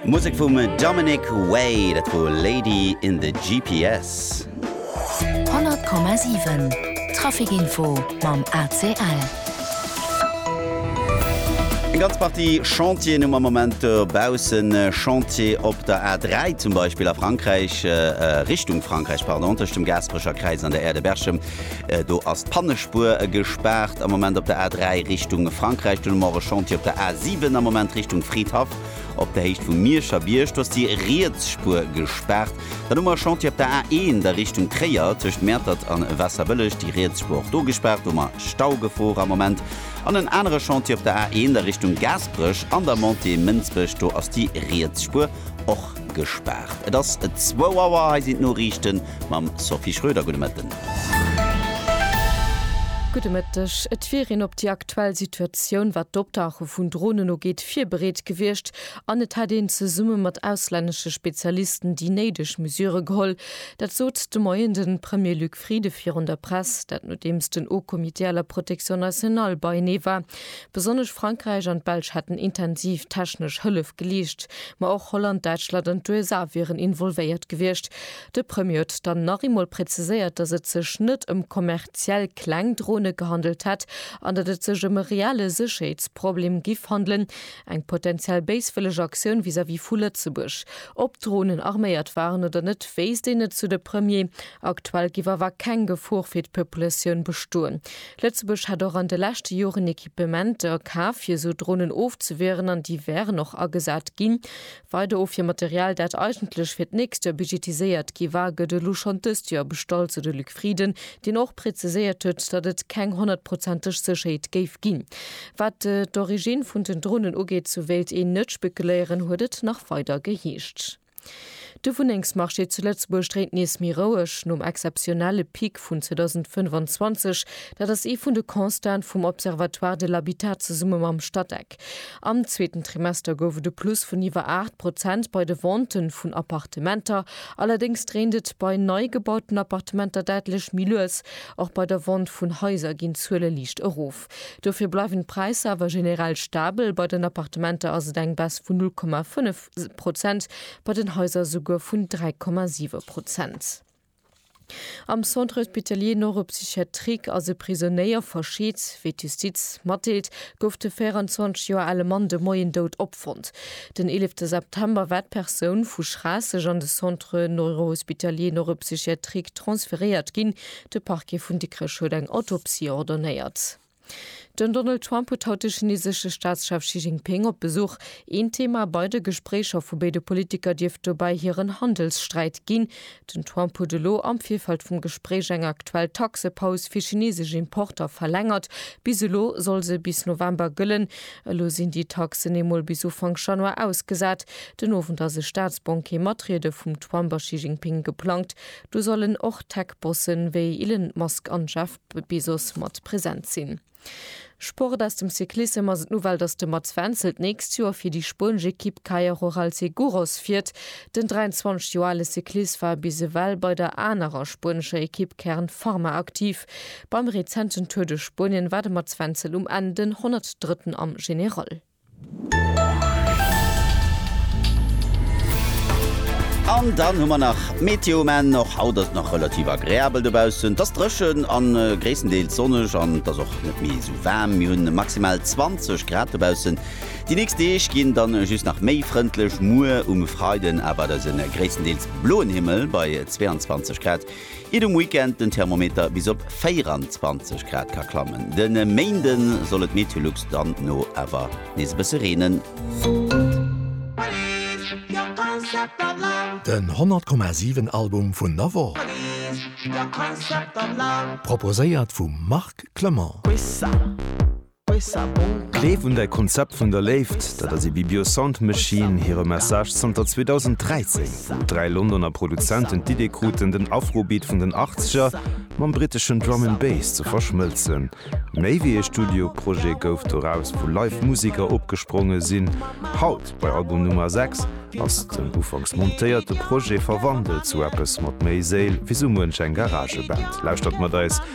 Musek vum Dominic Way, dat wor Lady in the GPS. 100,7 Trafic Info mam ACL. Eng ganz Partie Chantieren um am Moment dobaussen. Chantier op der A3 zum Beispill a Frankräich, Richtung Frankräich, pardon, tëscht dem Gasperecher Kräiz an der Aire de Berchem. Do ass d'Pannespuer gespaart am Moment op der A3 Richtung Frankräich. Dunn hu mer och e Chantier op der A7 am Moment Richtung Fridhaff op der Héicht vum Mierscher Bierg. Do ass déi riets Spuer gespaart. Dann hu mer e Chantier op der A1 a Richtung Tréier tëscht Mäertert an Waasserbëlleg. Déi riets Spuer och do gespaart. Do hu mer Staugefor am Moment. An en anere Chantier op der A1 a Richtung Gaasperech an der Montée Mënsbech. Do ass déi riets Spuer och gespaart. Et ass zwou Auer. Hei sinn d'Noriichten. Mam Sophie Schröder, gudde Mëtten. Gudde Mëtteg. Et wier een op déi aktuell Situatioun, wat d'Optauche vun Dronen ugeet, virbereet gewiescht an et hätt een zesumme mat auslännesche Spezialisten déi néideg Mesure geholl. Dat sot de Moien de Premier Luc Frieden virun der Press. Dat nodeems den Haut Comité à la protection nationale beienee war. Besonnesch Frankräich an d'Belsch hätten intensiv technesch Hëllef geleescht, ma och Holland, Däitschland an d'USA wieren involvéiert gewiescht. De Premier huet dann nach eemol präziséiert, datt et sech net ëm kommerziell kleng Drone gehandelt hätt an datt et sech ëm e reelle Sécherheetsproblem giff handelen, eng potenziell béiswëlleg Aktioun vis-à-vis vu Lëtzebuerg. Ob d'Dronen arméiert waren oder net, wéisst een net, sou de Premier. Aktuell giff awer keng Gefor fir d'Populatioun bestoen. Lëtzebuerg hat och an de leschte Joren Equipementer kaf, fir esou Dronen ofzewieren, an déi wären och agesat ginn. Weider Ofwiermaterial, dat eigentlech fir d'nächst Joer budgetiséiert gi war, gëtt elo schonn dëst Joer bestallt, sou de Luc Frieden, deen och preziséiert huet, datt et keng honnertprozenteg Sécherheet géif ginn. Wat d'Originn vun den Dronen ugeet, sou wéilt een net spekeléieren, huet et nach weider geheescht. De Wunnengsmarché zu Lëtzebuerg dréint nees méi roueg nom exzeptionelle Pic vun 2025. Dat ass ee vun de Constaten vum Observatoire de l'habitat zesumme mam Statec. Am zweeten Trimester gouf et e Plus vun iwwer 8 Prozent bei de Vente vun Appartementer. Allerdéngs dréint et bei nei gebauten Appartementer däitlech méi lues. Och bei der Vente vun Haiser ginn d'Zuele liicht erof. Dofir bleiwen d'Präisser awer generell stabel. Bei den Appartementer ass et eng Baisse vun 0,5. Prozent, bei den Haiser souguer vun 3,7 Prozent. Am Centre Hospitalier Neuropsychiatrique ass e Prisonéier verscheet. Wéi d'Justiz matdeelt, gouf de 24 Joer ale Mann de Moien dout opfonnt. Den 11 September war d'Persoun vu Schraasseg an de Centre Neurohospitalier Neuropsychiatrique transferéiert ginn. De Parquet vun Dikrech huet eng Autopsie ordonnéiert. Den Donald Trump huet haut de chinesesche Staatschef Xi Jinping op Besuch. Een Thema bei de Gespréicher vu béide Politiker dierft dobäi hiren Handelssträit ginn. Den Trump huet elo am Virfeld vum Gespréich eng aktuell Taxepaus fir chinesesch Importer verlängert. Bis elo soll se bis November gëllen. Elo sinn déi Taxen ee Mol bis Ufank Januar ausgesat. Den Owend ass e Staatsbanquet mat Riede vum Trump a Xi Jinping geplangt. Do sollen och Tech-Bossen wéi Elon Musk an Jeff. Wéi soss mat present sinn. Sport aus dem Cyclissem ass et d'Nouvelle, datt de Mats Wenzel d'nächst Joer fir déi spuenesch Ekipp Caja Rural Seguros fiert. Den 23 Joer ale Cyclist war bis ewell bei der anerer spuenescher Ekipp Kern Pharma aktiv. Beim rezenten Tour de Spuenien war de Mats Wenzel um Enn den 103. am General. An dann hu mer nach d'Meteo, men och haut ass et nach relativ agreabel dobaussen. Et ass dréchen a gréisstendeels sonneg an et ass och net méi esou waarm. Mir hunn maximal 20 Grad dobaussen. Déi nächst Deeg ginn dann just nach méi frëndlech, muer um Freiden awer et ass e gréisstendeels bloen Himmel bei 22 Grad. Iert um Weekend den Thermometer bis op 24 Grad ka klammen. De Méinde soll et Meteolux dann no awer nees e bësse reenen. Den 100 Komma 7 Album vun der Woch, proposéiert vum Marc Clement. Gleef un däi Konzept vun der Léift, dat ass Ibibio Sound Machine hire Message zanter 2013, wou dräi Londoner Produzenten d'Idee kruten, den Afrobeat vun den Achtzeger mam briteschen Drum and Bass ze verschmëlzen. Méi wéi ee Studioprojet gouf doraus, wou live Museker opgespronge sinn. Haut, bei Album Nummer 6, ass den ufanks montéierte Projet verwandelt zu eppes mat méi Séil wéi sou muench eng Garageband. Lauschtert mat eis!